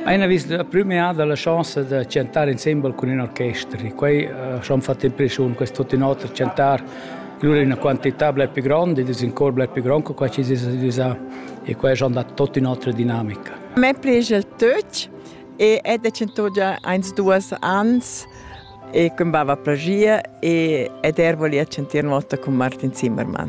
Ina vista da prima dalla chaussa da chantar insembel cun in orchester. Quei ha fatto impressiun, questo tutto in otra chantar lura una quantità bler più grande, dus in cor bler più grande che qua ci sa e qua è andato tutto in un'altra dinamica. A me piace il tuch e è decennato già eins duas ans e combava plagia e ed ervo li a chantir una volta con Martin Zimmermann.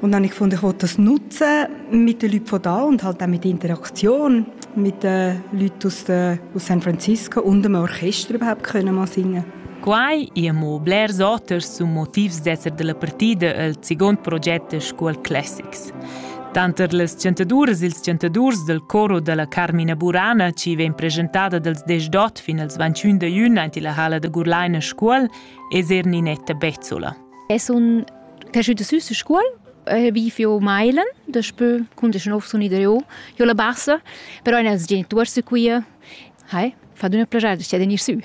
Und habe ich gefunden, ich will das nutzen mit den Leuten von da und halt auch mit der Interaktion mit den Leuten aus, de, aus San Francisco und dem Orchester überhaupt können mal singen. Quai è mo blers oters sun motivs d'esser della partida el segund proget School Classics. Tanter las chantaduras e ils chantadurs del coro della Carmina Burana, ci vegn presentada dals 18 fin als 21 da jun ante la hala da Gurlaina Scuol, es er Ninetta Bezzola. Es un cresciuta süs a scuol, vi fio mailen, daspö cun desch nov sun i dareu jo la bassa, però eir ils genituors sun quia. Hai, fat üna plagiada, stia da gnir sü.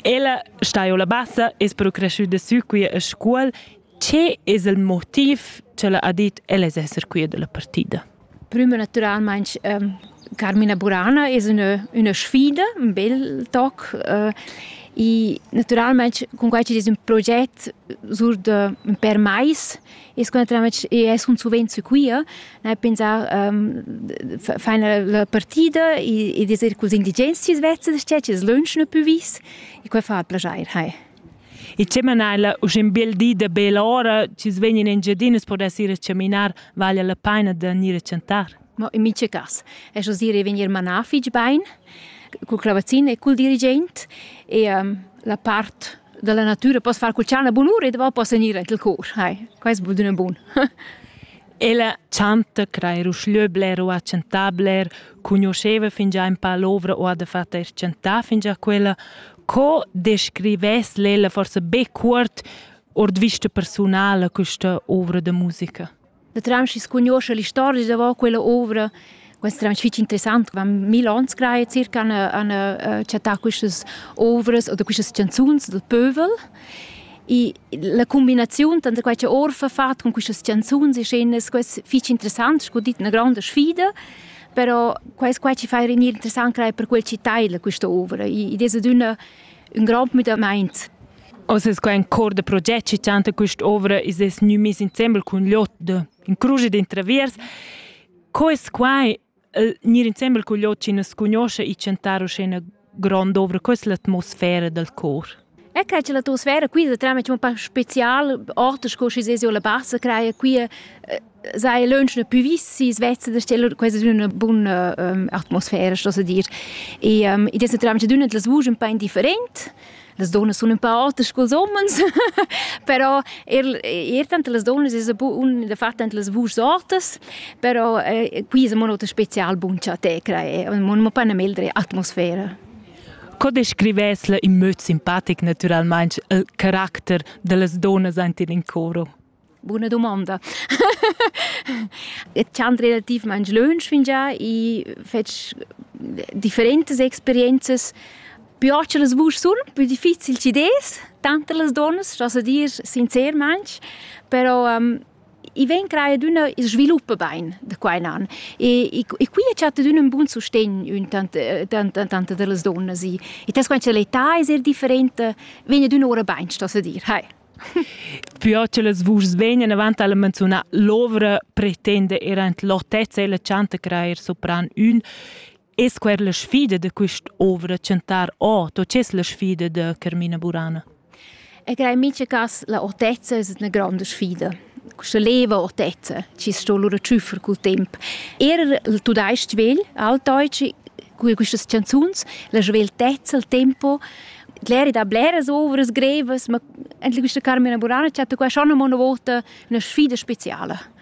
Ella sta jo la bassa, es però cresciuta sü quia a scuol. Che es il motiv cha ella ha dit, ella es esser quia da la partida? prüma natüralmaing Carmina Burana es üna üna sfida, ün bel toc e natüralmaing cun quai chi'd es ün proget sur da ün pêr mais es que natüralmaing i es cun suvenz sü quia, gnanc pensà fain la partida ed es eir culs indigens chi's vezza da sted chi's lönsch gnü pü vis e quai fa plaschair, hai. E tge mana ella usch in bel di da bella ora, chi's vegn in Engiadina, pudess ir a chaminar, vaglia la paina da gnir a chantar. Ma in mice cas, es oz ir e vegnir manà fich bain, cul clavazin e cul dirigent e um, la part della natura poss far cul chana bunura e dopo poss gnir anche il cor. Hai, quest будет un bun. Ella chanta, crair uschlö bler o a chantar bler, conosceva fingià in pa l'ovra o ha da fatter chantar fingià quella, Co descrivess l'Ella forse be cuort ord vista personala questa ovra da musica? Da Tramschi conosce la storia da quella ovra Questo è fitch interessant, wenn mil ans greie circa an a chattà quistas ovras oder quistas canzuns del pövel. E la combinazione tra quei che Orfa fatto con queste canzoni e scenes, questo fitch interessant, sco dit, una grande sfida. Però quest qua ci fa rinir interessant creer per quel ci taila questa ovra. Id es adüna ün grand müdamaint. Oz es quai in cor da proget chi chanta quest'ovra is es gnü mis insembel cun Liot in cruge d'intraviers. Co es quai gnir insembel cun Liot chi nu scunosce i chantar uschè grond ovra questa l'atmosfera dal cor. E che c'è l'atmosfera qui da trama un po' speciale, orte sco si sesio la bassa craia qui sei lunch più vissi svezza da stelle quasi una buona um, atmosfera sto dir e um, e dessa trama d'una das vugen un po' indifferent Las donnas sun ün pa auters culs homens, però er, er tanter las donnas es un fat tanter las vuschs ortas, però eh, qui es amo ün oter special bun cha te crai, mo nu pa 'na meldre atmosfera. Co descrivess in möd simpatic naturalmaing il caracter da las donnas aint in coro? Buna dumonda. Et chan relativmaing lönch fingià i fetsch differentas experienzas. Più ocha las vusch sun, più difficil chi des, tanter las donnas, das a dir sincermaing, però ehm, i ven creia d'üna il svilupp bain da qua in an. E, e, e qui a chatta d'ün ün bun sustegn ün tant, tant, tant da las donnas. I, e tas quant cha l'età es eir differenta, vegna d'üna ora bain, das a dir. Hai. Pü ot che las vuschs vegnan avant alla menziunà l'ovra pretenda er ant l'otezza e la chanta crair sopran ün es quer la sfida da quist'ovra chantar ot o c'es la sfida da Carmina Burana? E crei mica cas la otezza es üna gronda sfida. Questa leva otezza ci sto lura ciuffar col temp. Er il tudais-ch vegl, altdeutschi, cur quistas chanzuns, la sveltezza, il tempo, l'eri da bleras ovras grevas, ma anche questa Carmina Burana ci ha detto che schon una volta una sfida speciale.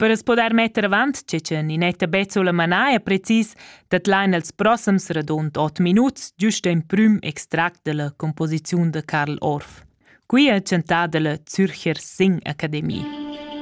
Per as poder metter avant che che Ninetta Bezzola manaja precis dat lain els prossams radund 8 minuts giust in prüm extract della composiziun de Karl Orff. Qui è chantada la Zürcher Sing Akademie.